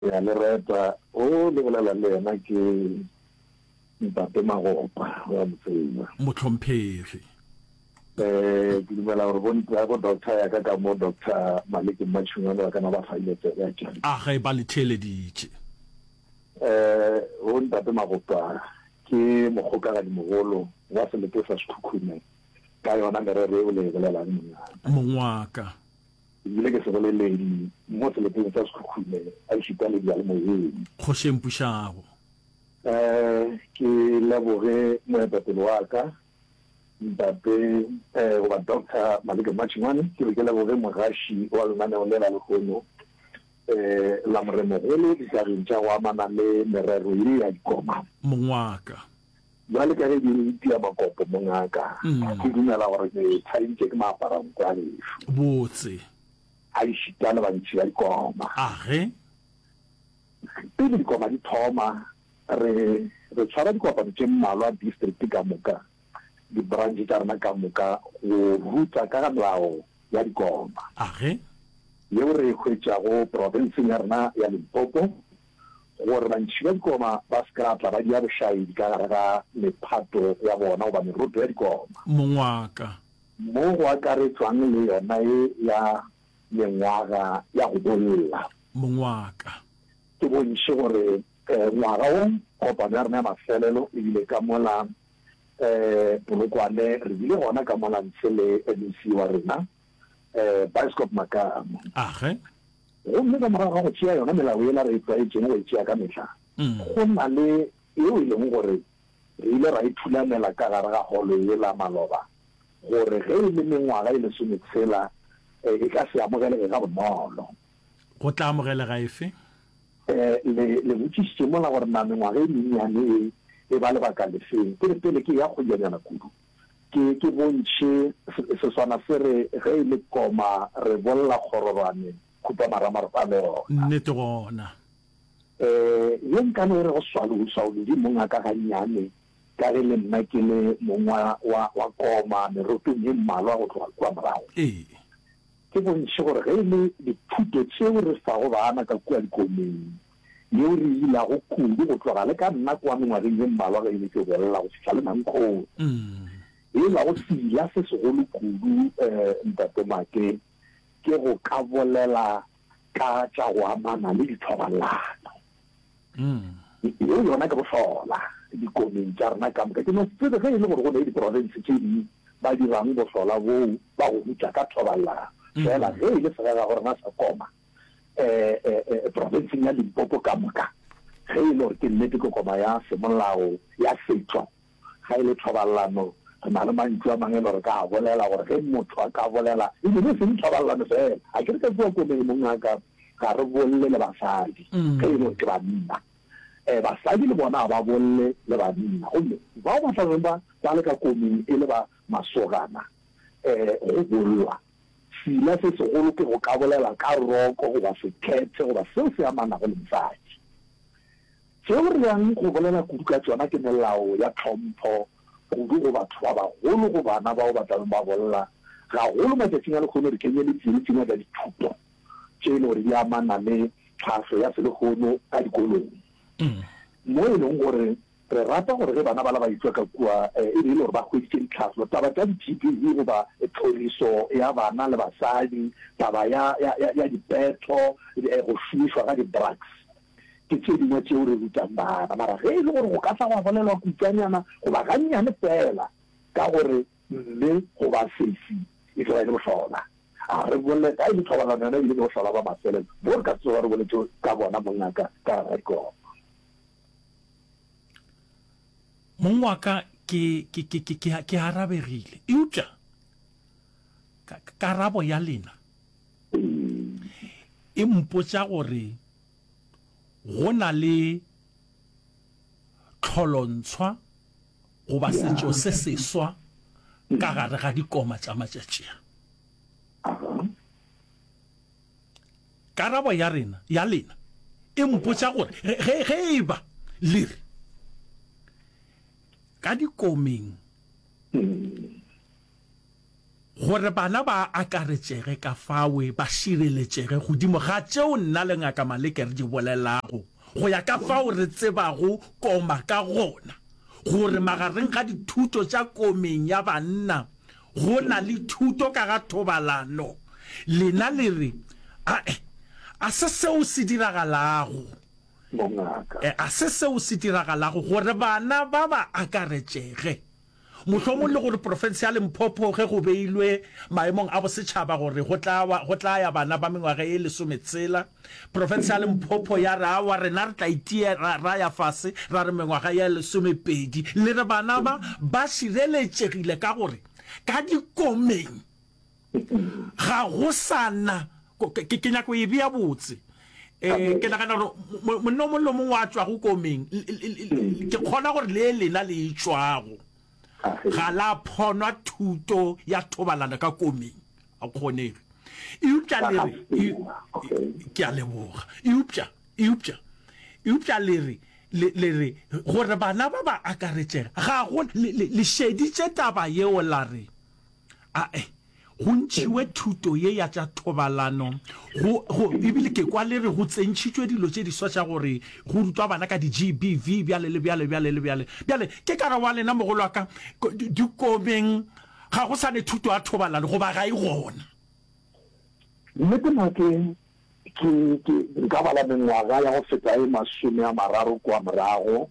Ke a le reta. O le bolela le yena ke Ntate Magopa, o a mo tseba. Mohlomphegi. E, ke dumela gore bo nta, bo doctor ya ka ka mo, Doctor Maliki Mmatšhungwane ba kana ba fa ile tsebe ya tšona. A ge ba le theeleditše. E, bo Ntate Magopa ke mokgokagadi mogolo wa selete sa Sekhukhune ka yona merero e o le e bolelang mongaka. Mongwaka. Ke bile ke seboleledi mo seleteng sa Sekhukhune gaešita le diyalemoyeng. Kgoši e mpušago. Ke leboge moetapele wa ka Ntate goba Doctor Maleke Matšhengwane, ke be ke leboge mogaši wa lenaneo lela lehono la Moremogolo ditageng tša go amana le merero ye ya dikoma. Mongwaka. Bjale ka ge ke tia makopo, mongaka, ke dumela gore ke tshadintše ke maaparanku a lešu. Botse. A išita le bantši ba dikoma. Age. Pele dikoma di thoma, re, re tshwara dikopano tše mmalwa distrikte ka moka, dibranche tša rena ka moka, go ruta ka ga melao ya dikoma. Age. Yeo re e hwetšago profenseng ya rena ya Limpopo, gore bantšhi ba dikoma ba se ka tla ba dia bošaedi ka gare ga mephato ya bona goba meroto ya dikoma. Mongwaga. Mo go akaretšwang le yona ye ya mengwaga ya go bolla. Mongwaga. Ke bontši gore ngwaga wo kopano ya rena ya mafelelo e bile ka mola Polokwane, re bile gona ka mola ntshe le MEC wa rena. um Biskop Makamo. Age. Gomme ka morago ga go tšea yona melao yela re e tlwaetšeng go e tšea ka mehla, mm. go na le yeo e leng gore re ile ra e thulamela ka gare ga holo yela maloba gore ge e le mengwaga e lesome tshela e, e ka se amogelege ga bonolo. Go tla amogelega efe? Eh, le le botšišitše mola gore na mengwaga e mennyane e e ba lebaka lefeng ke re pele ke ya kgojanyana kudu ke, ke bontšhe seswana se re, ge e le koma re bolla kgororwane, khupamarama a le gona. Nnete gona. Um ye nka no e re go swalou, swaolodi mong a ka gannyane, ka ge le nna ke le mong wa, wa, wa koma merotong ye mmalwa go tloga kua morago. Ee. Ke bontšhe gore ge e le dithuto tšeo re fago baana ka kua dikomeng, yeo re e ilago kudu go tloga le ka nna kwa mengwageng ye mmalwa ge e le tšo bolela go fihla le mankgong. E la go sila se segolo kudu, um Ntate Make, ke go ka bolela ka tša go amana le dithobalano. Yeo yona ke bohlola dikomeng tša rena ka moka. Ke no tsebe ge e le gore go na le diprofense tše ding ba dirang bohlola boo ba go rutša ka thobalano, fela ge e le segagagorena sa koma, profenseng ya Limpopo ka moka, ge e le gore ke nnete ke koma ya semolao ya setšo. Ga e le thobalelano, re na le mantšu a mangwe e le gore re ka a bolela gore ge motho a ka bolela, e be e seng thobalelano fela. A ke re ka kua komeng mong a ka, ga re bolle le basadi ge e le gore ke banna. Basadi le bona ga ba bolle le banna. Gomme bao ba tla beng ba ba le ka komeng e le ba masogana go bollwa Sila se segolo ke go ka bolela ka roko goba sekhethe goba seo se amanago le mosadi. Tšeo re yang go bolela kudu ka tšona ke melao ya tlhompho kudu go batho ba bagolo, go bana bao ba tlabeng ba bolla, gagolo matšatšing a lekgono di kenyeletšile le tše ngwe tša dithuto tše e le gore di amana le tlhahlo ya selehono ka dikolong, mo e leng gore Re rata gore ge bana bala ba e-tšwa ka kua e be e le gore ba hweditše ditlhahlo, taba tša di-GBV goba tlhoriso ya bana le basadi, taba ya, ya, ya, ya dipetho, go šomišwa ga di-drugs. Ke tše dingwe tšeo re rutang bana. Mara ge e le gore go ka tla gwa bolelwa kutšwanyana goba gannyane feela ka gore mme goba sesi e tlo ba e le bohlola, a re bole, ka e le thobalano yona e bile e le bohlola bja mafelelo, mo re ka se tsoga re boletše ka bona, mongaka, ka Rre Kobo. Mong wa ka, ke, ke, ke, ke, ke, ke arabegile. Eupša, ka, karabo ya lena e mpotša gore go na le tlholontshwa goba setšo se seswa ka gare ga dikoma tša matšatši a. Karabo ya rena ya lena e mpotša gore ge, ge e ba le re ka dikomeng gore bana ba akaretšege ka fawe ba šireletšege godimo ga tšeo nna le Ngaka Maleke re di bolelago go ya ka fao re tsebago koma ka gona gore magareng ga dithuto tša komeng ya banna Go na le thuto ka ga thobalano. Lena le re, A-e, a se seo se diragalago. Bongaka. E, a se seo se diragalago, gore bana ba ba akaretšege. Mohlomong le gore profense ya Limpopo, ge go beilwe maemong a bosetšhaba gore go tla, go tla ya bana ba mengwaga e lesometshela, Profensiale Mphopho ya re, Aowa, rena re tla itia ra, ra ya fase, ra re mengwaga ye lesomepedi, le re bana ba, ba šireletšegile ka gore ka dikomeng ga go sa na. Ke, ke, ke nyaka go e bea botse. E, ke nagana gore monna o mongwe le o mongwe wa tšwago komeng, ke kgona gore le lena le e tšwago. ga la phonwa thuto ya thobalano ka komeng a kgonege eupša le re ke a leboga eupša eupša eupša le re le re gore bana ba ba akaretšega ga go le šeditše taba yeo la re A e go ntšhiwe thuto ye ya tša thobalano go, go, ebile ke kwa le re go tsentšhitšwe dilo tše diswa tša gore go rutwa bana ka di-GBV bjale le bjale bjale le bjale. Bjale ke ka re wa lena mogolo wa ka dikomeng ga go sane thuto ya thobalano goba ga e gona. Nnete na ke, ke, ke nka ba la mengwaga ya go feta e masome a mararo kua morago,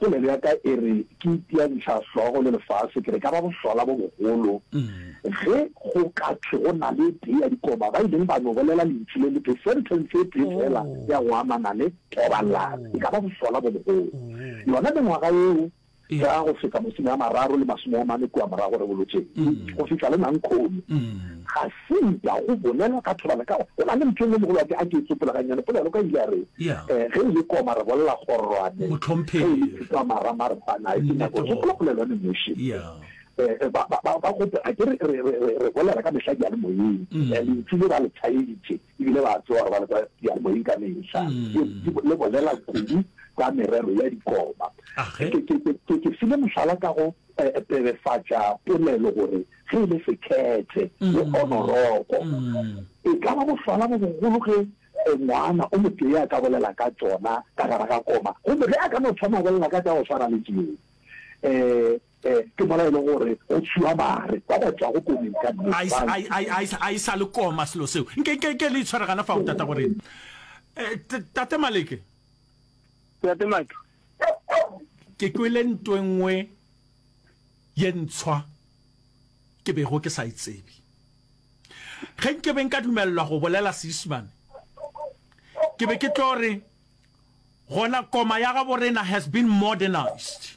Polelo ya ka e re ke itia dihlahlogo le lefase ke re ka ba bohlola bo bogolo ge go ka thwe go na le tee ya dikoba ba ileng ba no bolela lentšu le letee, sentence e tee fela ya go amana le thobalano. E ka ba bohlola bo bogolo. Yona mengwaga yeo ya go feta masome a mararo le masome a mane kua morago Rebolotšeng go fihla le Nankhooni ga Se ita go bolela ka thobana ka go na le ntho engwe mogolo wa ke a ke e tsopola ga nnyane polelo ka ile a re eh ge ile koma re bolela gorwane ge ile tsa mara mara ba na ke nako go tsopola polelo ne moshi eh ba ba ba go a ke re re re re bolela ka mehla di a le moyeng le ntse ba le tshayeditse e bile ba tsewa gore ba le kwa diyalemoyeng ka mehla, ke le bolela kudu ka merero ya dikoba. Ke ke file mohlala ka go pebefatša polelo gore ge e le sekhethe le onoroko, e ka ba bohlwala bo bogolo ge ngwana o motee a ka bolela ka tšona ka gare ga koma, gomme ge a ka no thoma bolela ka tša go swana le tšeo, Ee, ke mola e le gore go tšhiwa bare ba ba tšwago komeng ka nnete. A e sa, a e, a e, a e sa, a e sa le koma selo seo. Nke, nke, nke le itshware gana fao, Tata Goreng. Eh, t, Tate Maleke. Tate Maki. Ke kwele nto e nngwe ye ntshwa ke bego ke sa e tsebe. Ge nke be nka dumelelwa go bolela Seisimane, ke be ke tlo re, gona koma ya gabo rena has been modernised.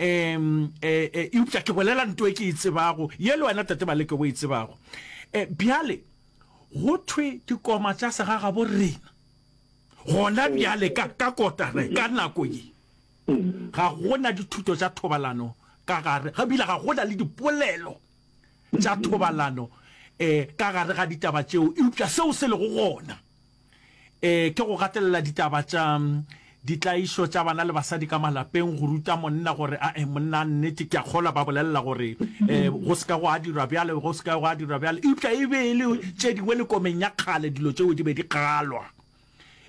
um eupša ke bolela nto e ke e tsebago ye le wena tate baleke o e tsebago um bjale go thwe dikoma tša segagabo rena gona bjale ka ka kotara ka nako ye ga gona dithuto tša thobalano ka gare ga bile ga gona le dipolelo tša thobalano eh ka gare ga ditaba tšeo eupša seo se lego gona Ee, ke go gatelela ditaba tša ditlaišo tša bana le basadi ka malapeng, go ruta monna gore a e monna a nnete. Ke a kgolwa ba bolelela gore e, go se ka go a dirwa bjale, go se ka go a dirwa bjale. Eupša e be e le tše dingwe le komeng ya kgale, dilo tšeo di be di kgalwa.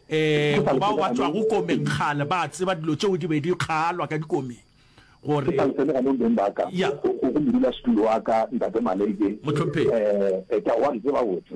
E, go bao ba tšwago komeng kgale ba tseba dilo tšeo di be di kgalwa ka dikomeng gore. Ke sa le ganong beng ba ka, go go modulasetulo wa ka, Ntate Maleke, e, ke a go a di tseba botse.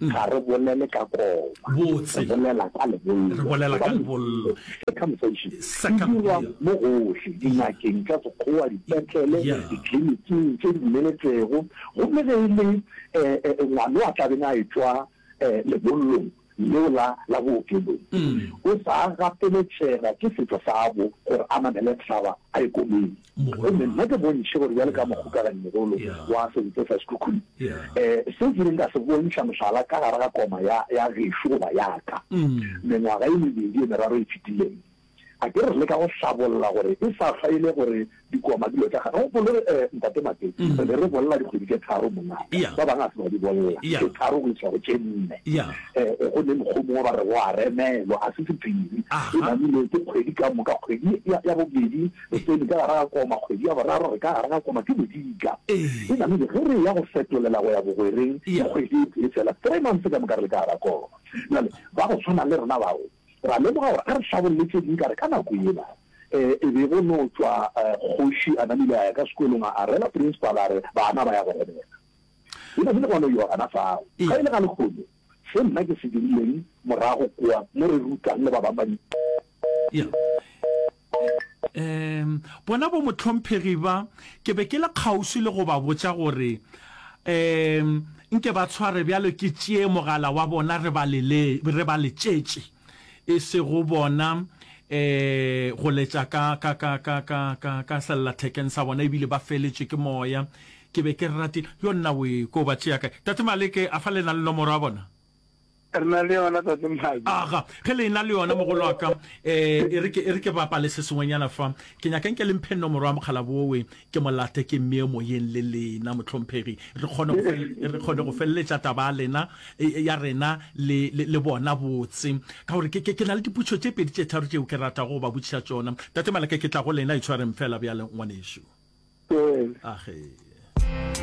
ga re bolele ka koma, re bolela ka lebollo, re bolela ka lebollo, circumcision, e dirwa mo gohle, dingakeng tša Sekgowa, dipetlele, ditliliniking tše di dumeletšwego, gomme ge e le um ngwano a tla beng a etšwa um lebollong leo la la bookelong, o sa gapeletšega ke setšo sabo gore a namele thaba a ye komeng. Gomme nna ke bontšhe gore bjale ka mokgokaganyimogolo wa Sentse sa Sekhukhune, um seo ke ileng ka se bontšha mohlala ka gare ga koma ya, ya gešo goba ya ka, mengwaga e mebedi e meraro e fetileng, a ke re re leka go hlabolla gore e sa hlwa e le gore dikoma dilo tša gagwe. Gopole, um Ntate Mate, re be re bolela dikgwedi tše tharo, mongaka, ba bangwe ga se ba di bolela, tše tharo go iša go tše nne. Um go ne mokgo mongwe ba re go a remelwa, a se sephiri, e namile ke kgwedi ka moka, kgwedi ya, ya bobedi Eteni ka gare ga koma, kgwedi ya boraro re ka gare ga koma ke bodika. E namile ge re eya go fetolela go ya bogwereng ke kgwedi e tee fela, three months ka moka re le ka gare ga koma. Bjale ba go tshwana le rena bao ra lemoga gore a re hlabolle tše ding ka re ka nako yela e be go no tšwa kgoši a namile a ya ka sekolong a rela principal a re bana ba ya go robela. E namile gwa no ewa gana fao. Ga e le ga lekgono se nna ke se dirileng morago kwa mo re rutang le ba bangwe ba di. Ee, bona bomohlomphegi ba, ke be ke le kgauswi le go ba botša gore, ee, nke ba tshware bjalo ke tšee mogala wa bona re ba lele, re ba letšetše, e sego bona, ee, go letša ka, ka, ka, ka, ka, ka, ka sellathekeng sa bona, ebile ba feletšwe ke moya. Ke be ke ratile, yo nnawe, ko ba tšea kae? Tate Maleke, a fa le na le nomoro ya bona? Re na le yona tate Mmaji. Aga, ge le ena le yona mogolo wa ka, eh, e re ke, e re ke bapale se sengwenyana fa. Ke nyaka nke le mphe nomoro ya mogala bowe, ke mo late ke mmeye moyeng le lena, mohlomphegi, re kgone go, re kgone go feleletša taba ya lena, ya rena le, le, le bona botse. Ka gore ke, ke, ke na le dipotšo tše pedi tše tharo tšeo ke ratago go ba botšiša tšona. Tate Maleka, ke tla go lena, itshwareng feela bjale, ngwanešu. Ee. Age.